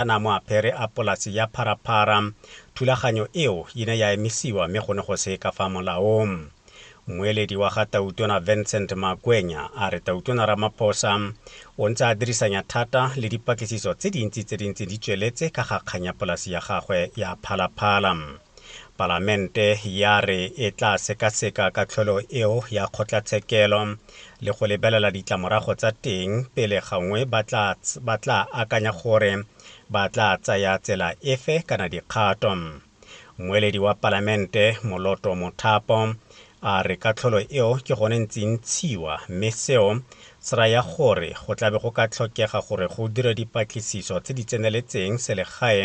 a na mo apere a polase ya Phara Phara, thulaganyo eo e ne ya emisiwa mme go ne go se ka fa molaong. Mmueledi wa ga Tautona Vincent Makwenya a re Tautona Ramaphosa o ntse a dirisanya thata le dipatlisiso tse dintsi tse di ntseng di tsweletse ka ga kgang ya polase ya gagwe ya Phala Phala. Palamente ya re e tla sekaseka katlholo eo ya kgotlatshekelo le go lebelela ditlamorago tsa teng pele gangwe ba tla ba tla akanya gore ba tla tsaya tsela efe kana dikgato. Mmueledi wa Palamente Moloto Mothapo a re katlholo eo ke gone ntse e ntshiwa mme seo se raya gore go tlabe go ka tlhokega gore go dirwe dipatlisiso tse di tseneletseng selegae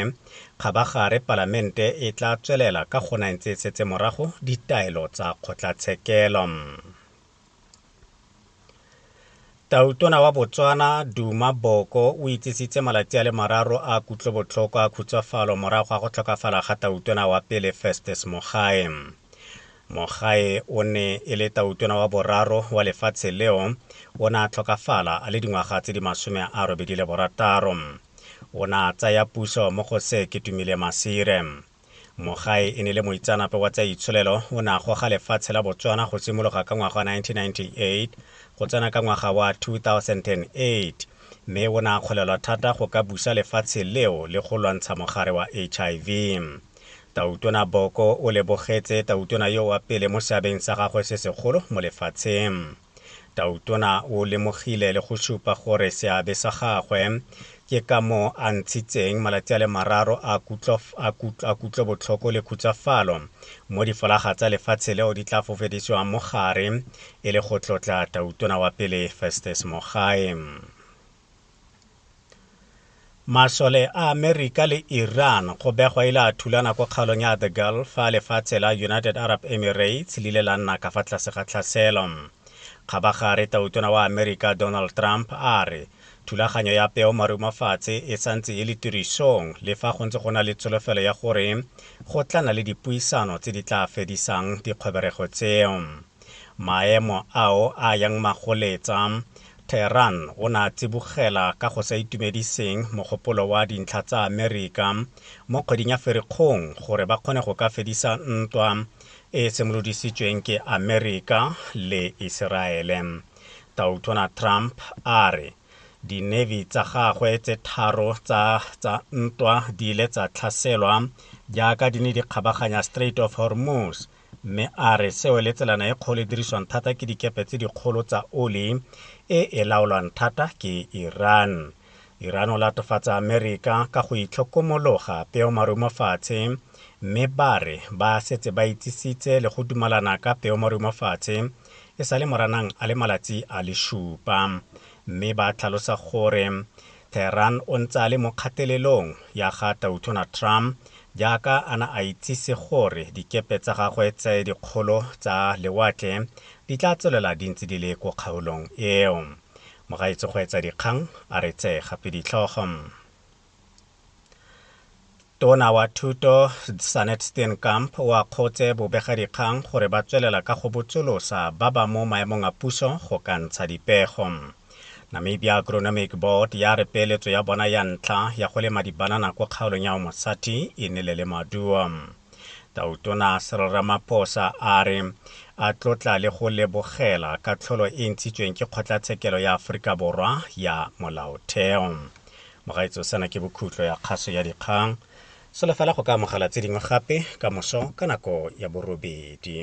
Kgabagare Palamente e tla tswelela ka gona e ntse e setse morago ditaelo tsa kgotlatshekelo. Tautona wa Botswana, Duma Boko, o itsisitse malatsi a le mararo a kutlobotlhoko a khutsafalo morago ga go tlhokafala ga tautona wa pele Festus Mogae. Mogae o ne e le tautona wa boraro wa lefatshe leo, o ne a tlhokafala a le dingwaga tse di masome a robedi le borataro. O ne a tsaya puso mo go se Ketumile Masire. Mogae e ne le moitseanape wa tsa itsholelo, o ne a goga lefatshe la Botswana go simologa ka ngwaga wa 1998 go tsena ka ngwaga wa 2008, mme o ne a kgolelwa thata go ka busa lefatshe leo le go lwantsha mogare wa HIV. Tautona Boko o lebogetse Tautona yo wa pele mo seabeng sa gagwe se segolo mo lefatsheng. Tautona o lemogile le go supa gore seabe sa gagwe ke ka moo a ntshitseng malatsi a le mararo a kutlo, a kutlo, a kutlo botlhoko le khutsafalo mo difolaga tsa lefatshe leo di tla fofedisiwang mo gare e le go tlotla Tautona wa pele Festus Mogae. Masole a Amerika le Iran go begwa ile a thulana ko kgaolong ya The Gulf fa lefatshe la United Arab Emirates le ile la nna ka fa tlase ga tlhaselo. Kgabagare tautona wa Amerika Donald Trump a re thulaganyo ya peo marumafatshe e santse e le tirisong le fa go ntse go na le tsholofelo ya gore go tla na le dipuisano tse di tla fedisang dikgweberego tseo. Maemo ao a yang magoletsa Theeran o ne a tsibogela ka go sa itumediseng mogopolo wa dintlha tsa Amerika mo kgweding ya Ferikgong gore ba kgone go ka fedisa ntwa e e simolodisitsweng ke Amerika le Iseraele. Tautona Trump a re di-navy tsa gagwe tse tharo tsa tsa ntwa di ile tsa tlhaselwa jaaka di ne di kgabaganya Strait of Hormuz Mme a re seo le tselana e kgolo e dirisiwang thata ke dikepe tse dikgolo tsa oli e e laolwang thata ke Iran. Iran o latofatsa Amerika ka go itlhokomologa peomarumo fatshe mme ba re ba setse ba itsisitse le go dumalana ka peomarumo fatshe e sa le moranang a le malatsi a le shupa mme ba tlhalosa gore Tehran o ntse a le mo kgatelelong ya ga Tautona Trump jaaka a na a itsise gore dikepe tsa gagwe tse dikgolo tsa lewatle di tla tswelela di ntse di le ko kgaolong eo. Mogaetsi Kgweetsa Dikgang a re tse gape ditlhogo. Tona wa Thuto Sanet Steenkamp o akgotse bobegadikgang gore ba tswelela ka go botsolosa ba ba mo maemong a puso go ka ntsha dipego. Namibia Agronomic Board ya re peeletso ya bona ya ntlha ya go lema dibanana ko kgaolong ya Omosati e nele le maduo. Tautona Cyril Ramaphosa a re a tlotla le go lebogela katlholo e ntshitsweng ke Kgotlatshekelo ya Aforika Borwa ya Molaotheo. Mogaetsho, sena ke bokhutlo ya kgaso ya dikgang. Solofela go ka amogela tse dingwe gape ka moso ka nako ya borobedi.